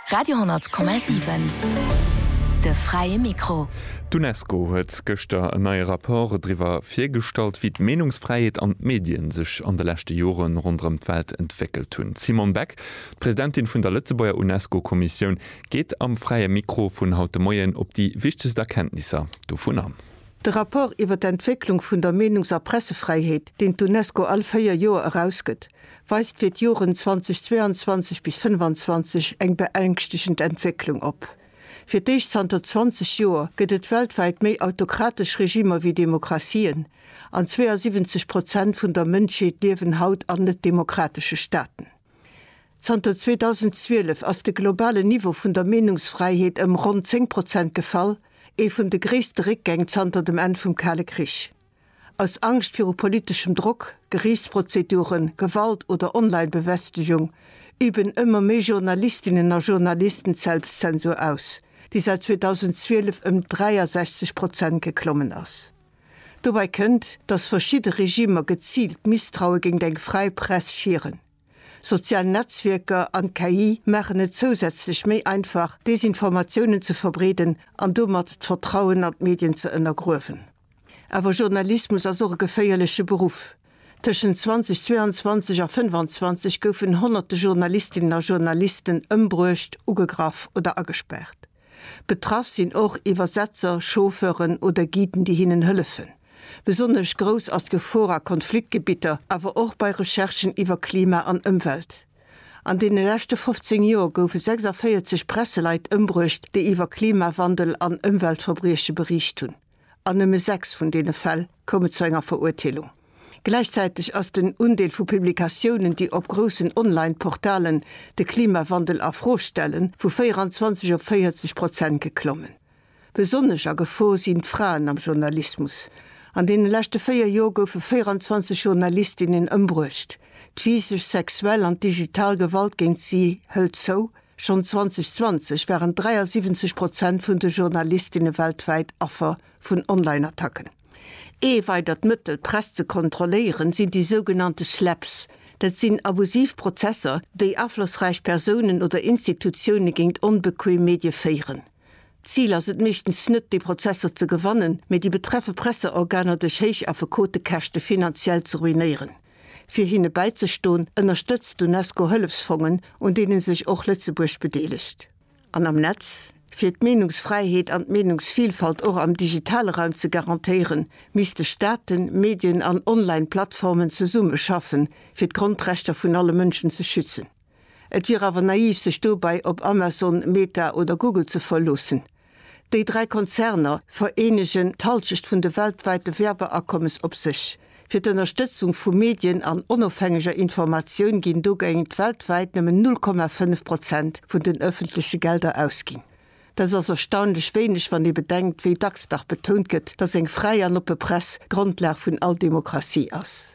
Radio 10,7 De fräie Mikro. D'Unesco huet gëschter en neie Rapport driwwer virgestallt, wéi d'Meenungsfräiheet an d'Medien sech an de leschte Jore ronderëm d'Welt entwéckelt hunn. D'Simone Beck, d'Presidentin vun der Lëtzebuerger UNESCO-Kommissioun, geet am fräie Mikro vun haut de Moien op déi wichtegst Erkenntnisser dovun an. De Rapport iwwer d'Entwécklung vun der Meenungs a Pressefräiheet, deen d'Unesco all véier Joer erausgëtt, weist fir d'Joren 2022 bis 25 eng beängstegend Entwécklung op. Fir d'éischt zanter 20 Joer gëtt et weltwäit méi autokratesch Regimer wéi Demokratien, an 72 Prozent vun der Mënschheet liewen haut an net-demokratesche Staaten. Zanter 2012 ass de globalen Niveau vun der Meenungsfräiheet ëm ronn 10 Prozent gefall, ee vun de gréisste Réckgäng zanter dem Enn vum Kale Krich. Aus Angscht viru politeschem Drock, Geriichtsprozeduren, Gewalt oder Online-Bewästegung üben ëmmer méi Journalistinnen a Journalisten d'Selbstzensur aus, déi säit 2012 ëm 63 Prozent geklommen ass. Dobäi kënnt, datt verschidde Regimer geziilt d'Misstraue géingt eng fräi Press schieren. Sozial Netzwierker an d'KI maachen et zousätzlech méi einfach, Desinformatiounen ze verbreeden an domat d'Vertrauen an d'Medien ze ënnergruewen. Awer Journalismus ass och e geféierleche Beruff. Tëschent 2022 a 25 goufen honnerte Journalistinnen a Journalisten ëmbruecht, ugegraff oder agespaart. Betraff sinn och Iwwersetzer, Chauffeuren oder Guiden, déi hinnen hëllefen. Besonnesch grouss ass d'Gefor a Konfliktgebitter, awer och bei Recherchen iwwer Klima an Ëmwelt. An deene leschte 15 Joer goufe 46 Presseleit ëmbruecht, déi iwwer Klimawandel an Ëmweltverbrieche beriicht hunn. An nëmme sechs vun deene Fäll koume zu enger Verurteelung. Gläichzäiteg ass den Undeel vu Publikatiounen, déi op groussen Online-Portalen de Klimawandel a Fro stellen, vu 24 op 40 Prozent geklommen. Besonnesch a Gefor sinn d'Fraen am Journalismus. An deene leschte véier Jor goufe 24 Journalistinnen ëmbruecht. D'Physesch, sexuell an d'digital Gewalt géint si hëlt zou. Schonn 2020 waren 73 Prozent vun de Journalistinne weltwäit Affer vun Online-Attacken. Ee weidert Mëttel, d'Press ze kontrolléieren, sinn déi sougenannte Slaps. Dat sinn abusiv Prozesser, déi aflossräich Persounen oder Institutioune géint onbequeem Medie féieren. D'Zil ass et meeschtens net, déi Prozesser ze gewannen, mee déi betreffe Presseorganer duerch héich Affekotekäschte finanziell ze ruinéieren. Fir hinne bäizestoen, ënnerstëtzt d'Unesco Hëllefsfongen, un deene sech och Lëtzebuerg bedeelegt. An am Netz, Fir d'Meenungsfräiheet an d'Meenungsvilfalt och am digitale Raum ze garantéieren, misste Staaten, Medien an Online-Plattformen zesummeschaffen, fir d'Grondrechter vun alle Mënschen ze schützen. Et wier awer naiv sech dobäi op Amazon, Meta oder Google ze verloossen. Déi dräi Konzerner vereenegen d'Halschecht vun de weltwäite Werbeakommes op sech. Fir d'Ënnerstëtzung vu Medien an onofhängeger Informatioun ginn dogéint weltwäit nëmmen 0,5 Prozent vun den ëffentleche Gelder ausginn. Dat ass erstaunlech wéineg wann ee bedenkt, wéi dacks dach betount gëtt, datt eng fräi an oppe Press d'Grondlag vun all Demokratie ass.